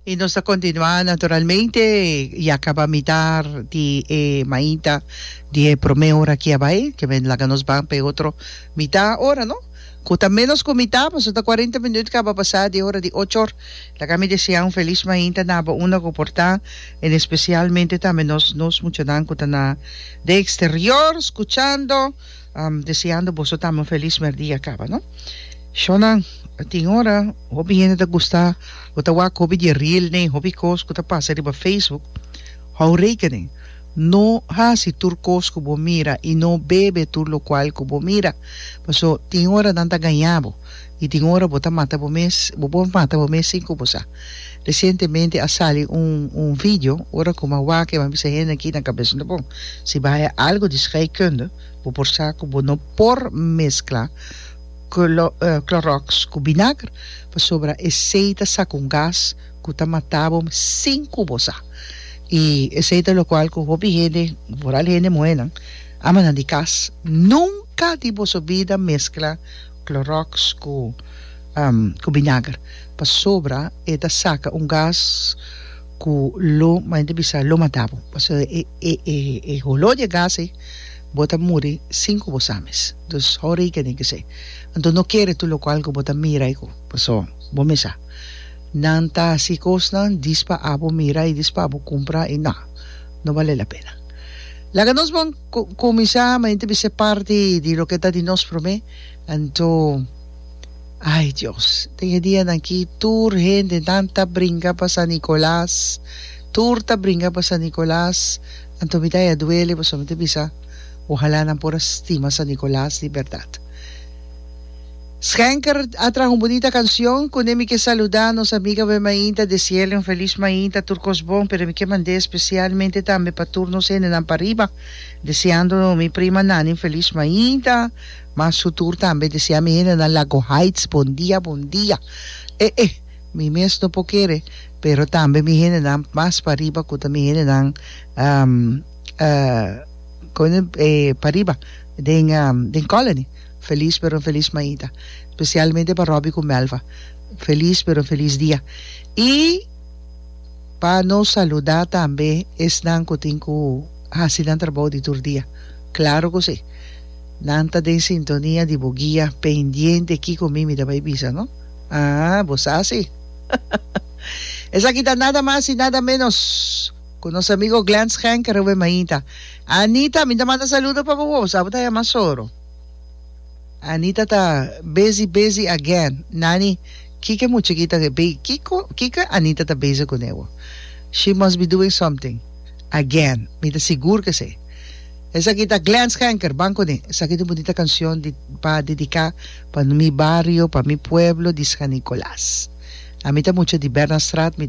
Y nos ta continua naturalmente ya caba mitar di e mainta di e prome ora aki a bay ke men laga nos ban pa e otro mita ora no cu ta menos cu mita paso ta cuarenta minut caba pasa di e ora di ochor laga mi desea un feliz mainta na bo unda cu por ta en especialmente tambe nos nos muchanan cu ta na den exterior scuchando. Am deseando boso tambe un feliz merdia caba no shonan tin ora hopi hende ta gusta o ta wak hopi di reel nen hopi cos cu ta pasa riba facebook hou rekening no haci tur cos cu bo mira y no bebe tur locual cu bo mira paso tin ora nan ta gañabo Y tin ora bo ta mata bo mes, bo por mata bo mes sin cu bo sa. Recientemente a sali un un video ora cu man wak eman bisa hende aki na cabes unda bon. Si bay a algo di scheikunde bo por sa cu bo no por mezcla clo clorox cu binager pasobra esey ta saca un gas cu ta mata bo sin cu bo sa. Y esey ta locual cu hopi hende, vooral hende muhernan, amanan di cas, nunca di boso bida mezcla Clorox cu cu binager pasobra e ta saca un gas cu lo m'a gente bisa lo matabo pasobra e e e e holo di e gas ei bo ta muri sin cu bo sa mes dus horika tin ki ser anto no kere tur local cu bo ta mira ei cu paso bo mi sa nan ta haci cosnan dispa abo mira y dispa abo cumpra y na no bale la pena laga nos bon Cu cuminsa mi a inti ser parti di loke ta di nos prome, anto ay Dios, den e dianan aki tur hendenan ta bringa pa San Nicolas, tur ta bringa pa San Nicolas, anto mi ta ya duele pasobra mi ta bisa ojalá nan por a stima San Nicolas di berdad. Schenker a traha un bunita cancion, Cune mi ke saluda nos amigabe mainta des cielo un feliz mainta tur cos bon, pero mi ke mande specialmente tambe pa tur nos hendenan pariba deseando mi prima Nani un feliz mainta, ma su tur tambe desea mi hendenan Lago Heights bon dia bon dia e e mi mes no por kere pero tambe mi hendenan mas pariba cu ta mi hendenan pariba den Colony. Feliz pero un feliz maita specialmente pa Robbie cu Melva feliz pero un feliz dia y pa no saluda tambe esnan cu tin cu haci nan trabou di tur dia claro cu si nan ta den sintonia di bo guia pendiente kico mi mi ta bay bisa no aa bo sa si esaki ta nada mas y nada menos cu nos amigo Glen Schenker oe maita Anita mi ta manda saludo pa bo bo sa bo ta yama soro. Anita ta busy busy again Nani kiko e mucheki ta kiko kiko Anita ta busy ku newo she must be doing something again mi ta sigur ke se esaki ta Glen Schenker ban kuné esaki ta un bunita kanshon di pa dediká pa mi bario pa mi pueblo di San Nicolas ami ta mucha di Bernard Straat mi.